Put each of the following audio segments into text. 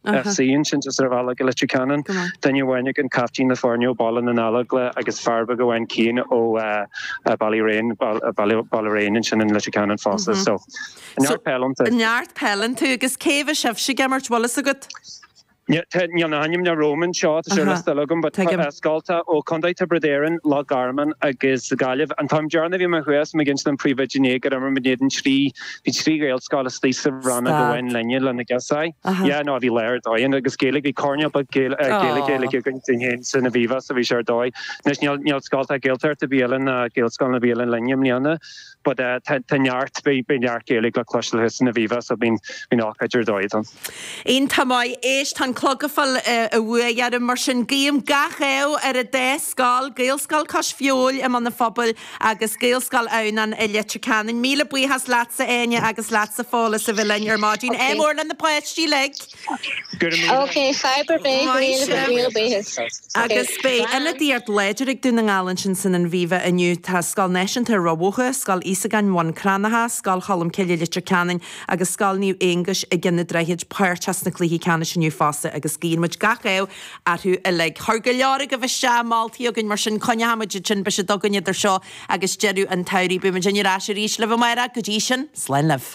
Ach sí insint is ar bhealach go Leitir Ceanainn, duine amháin ag an captaen le foirne ó Bhaile na nGallóglach agus fear beag amháin cinn ó Ballyraine, Ballyraine ansin in Leitir Ceanainn fosta. So neart peil iontu. Neart peil iontu agus cé a bheidh sibhse ag imirt bhfuil a fhios agat? Níl na hainmneacha romham anseo, tá sé ar an scoil agam, but scoltacha ó Contae Thiobraid Árann, Loch Garman agus Gaillimh. An t-am deireanach a bhí mé thuas, mé ag insint don phríomhoide inné gur imir muid in éadan trí Bhí trí Ghaelscoil istigh sa rannóg féin linne lena gcos ae. Yeah, no, bhí lá ar dóigh ann agus Gaeilge, bhí coirnéal beag Gaeilge-Gaeilge againn dúinn fhéin san Aviva so bhí sé ar dóigh. Anois níl, níl scoltacha Gaeltachta ar bith eile ann ná Gaelscoileanna ar bith eile ann linne i mbliana but eh, tá, tá neart, beidh, beidh neart Gaeilge le cloisteáil thuas san Aviva so bíonn, bíonn ócáid ar dóigh ann. Iontach maith, éist, tá an clog ag fáil an bhuaidh orm mar sin guím gach ádh ar an dá scoil, Gaelscoil Cois Feabhail i mBun an Phobail, Agus Gaelscoil Adhamhnáin i Leitir Ceanainn, míle buíochas leatsa Áine agus leatsa Fódhla as a bheith linn ar maidin. Ádh mór le na páistí uilig! Gura míle maith. Okay, fadhb ar bith, go Maith míle, sibh. míle buíochas. Okay, bye! Agus beidh ionadaíocht láidir ag Dún na nGall ansin san Aviva inniu. Tá Scoil Náisiúnta Ráth Bhoth, Scoil Íosagáin Bhun Cranncha, Scoil Cholmcille Leitir Ceanainn agus Scoil Naomh Aongais i gCionn an Droichid páirteach sna cluichí ceannais inniu fosta agus guíonn muid gach ádh orthu uilig. Chuir go leor agaibh isteach moltaí chugainn, mar sin coinneoimid iad sin beidh siad againn idir seo agus deireadh an tsamhraidh. Beidh muidinne ar ais arís libh amárach, go dtí sin, slán libh.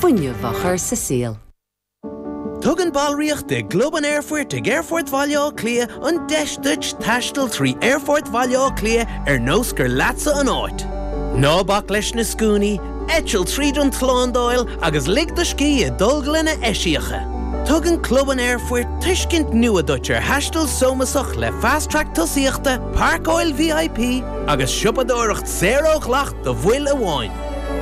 fuinneamh á chur sa saol. Tugann ballraíocht i gClub an Aerfoirt ag Aerfort Bhaile Átha Cliath an deis duit taisteal trí Aerfort Bhaile Átha Cliath ar nós gur leatsa an áit. Ná bac leis na scuainí, eitil tríd an tslándáil agus lig do scíth i dtolglanna eisiacha. Tugann Club an Aerfoirt tuiscint nua duit ar thaisteal sómasach le Fast Track Tosaíochta, Pairceáil VIP agus siopadóireacht saor ó dhleacht do bhaill amháin.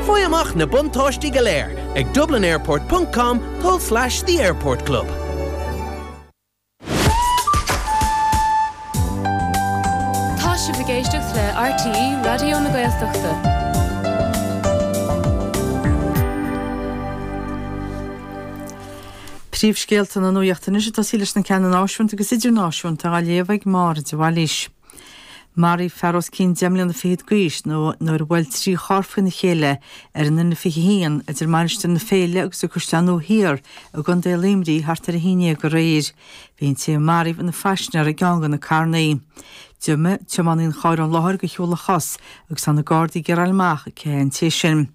Faigh amach na buntáistí go léir ag dublinAirport ponc com tulslais the airport club. Tá sibh ag éisteacht le RTÉ Raidió na Gaeltachta. Príomhscéalta na nuachta anois ag tosaí leis na ceanna náisiúnta agus idirnáisiúnta á léamh ag Máire de Bhailís. Maraíodh fear os cionn deich mbliana fichead d'aois nuair a bhuail trí charr faoina chéile ar an N21 idir Mainistir na Féile agus An Caisleán Nua Thiar i gContae Luimnigh thart ar a haon déag aréir. Bhí an té a maraíodh ina phaisinéir i gceann de na carrannaí. D'imigh tiománaí an chairr ón láthair de shiúl a chos agus tá na Gardaí ag iarraidh a fháil amach cé hé an té sin.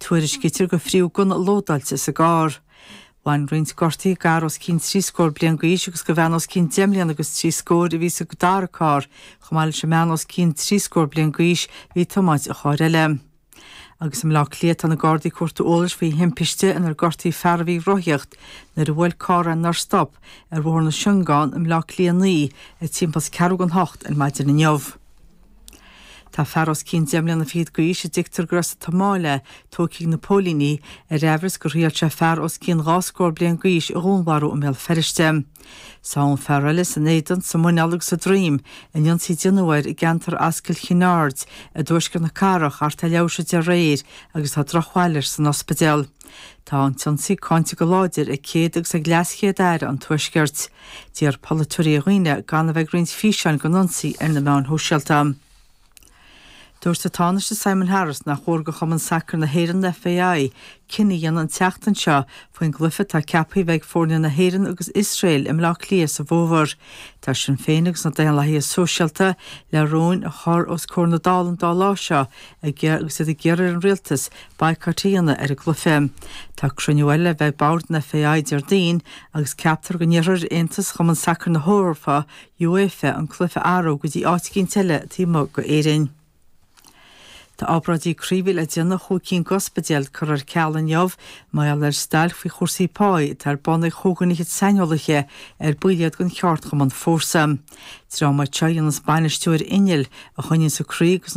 Tuairiscítear gur fritheadh gunna lódáilte sa gcarr. Bhain roinnt gortaithe d'fhear os cionn trí scór bliain d'aois agus do bhean os cionn deich mbliana agus trí scóir a bhí sa dara carr. Chomh maith leis an mbean os cionn trí scór bliain d'aois, a bhí ag tiomáint an chairr eile. Agus i mBleá Cliath tá na Gardaí ag cuartú eolais faoi thimpiste inar gortaíodh fear a bhí ag rothaíocht nuair a bhuail carr é nár stop ar Bhóthar na Siongán i mBleá Cliath 9 ag timpeall is ceathrú don hocht ar maidin inniu. Tá fear os cionn deich mbliana fichead d'aois a dtuigtear gur as an tSomáil é tógtha ag na póilíní ar aimhreas gur thriail sé fear os cionn dhá scór bliain d'aois a dhúnmharú i mBéal Feirste. Sádh an fear eile san éadan, sa muineál agus sa droim in ionsaí a déanadh air i gceantar Ascaill Chinn Aird i dtuaisceart na cathrach thart ar leathuair tar éis a deich aréir agus tá drochbhail air san ospidéal. Tá an t-ionsaí cáinte go láidir ag Céad agus ag LeasChéad-Aire an Tuaiscirt. D'iarr polaiteoirí ar dhaoine gan a bheith ag roinnt físeáin den ionsaí ar na meáin shóisialta. Dúirt an Tánaiste Simon Harris nach cóir do Chumann Sacair na hÉireann, FAI, cinneadh a dhéanamh an tseachtain seo faoin gcluiche atá ceaptha a bheith ag foirne na hÉireann agus Iosrael i mBleá Cliath sa bhfómhar. Tá Sinn Féin agus na Daonlathaithe Sóisialta le rúin a chur os comhair na Dála an dá lá seo agus iad ag iarraidh ar an Rialtas baghcat a dhéanamh ar an gcluiche. Tá cruinniú eile le bheith ag Bord an FAI Déardaoin agus ceaptar go n-iarrfar ar Aontas Chumann Sacair na hEorpa, UEFA, an cluiche a athrú go dtí áit eicínt eile taobh amuigh d'Éirinn. Tá obráidí croí a bhí le déanamh i chúig cinn d'ospidéil curtha ar ceal inniu mar gheall ar stailc faoi chúrsaí páí atá ar bun ag chúigear fhichead saineolaithe ar baill iad den cheardchumann Fórsa. Dream iad seo a dhéananns bainistiú ar innill a choinníonns an croí agus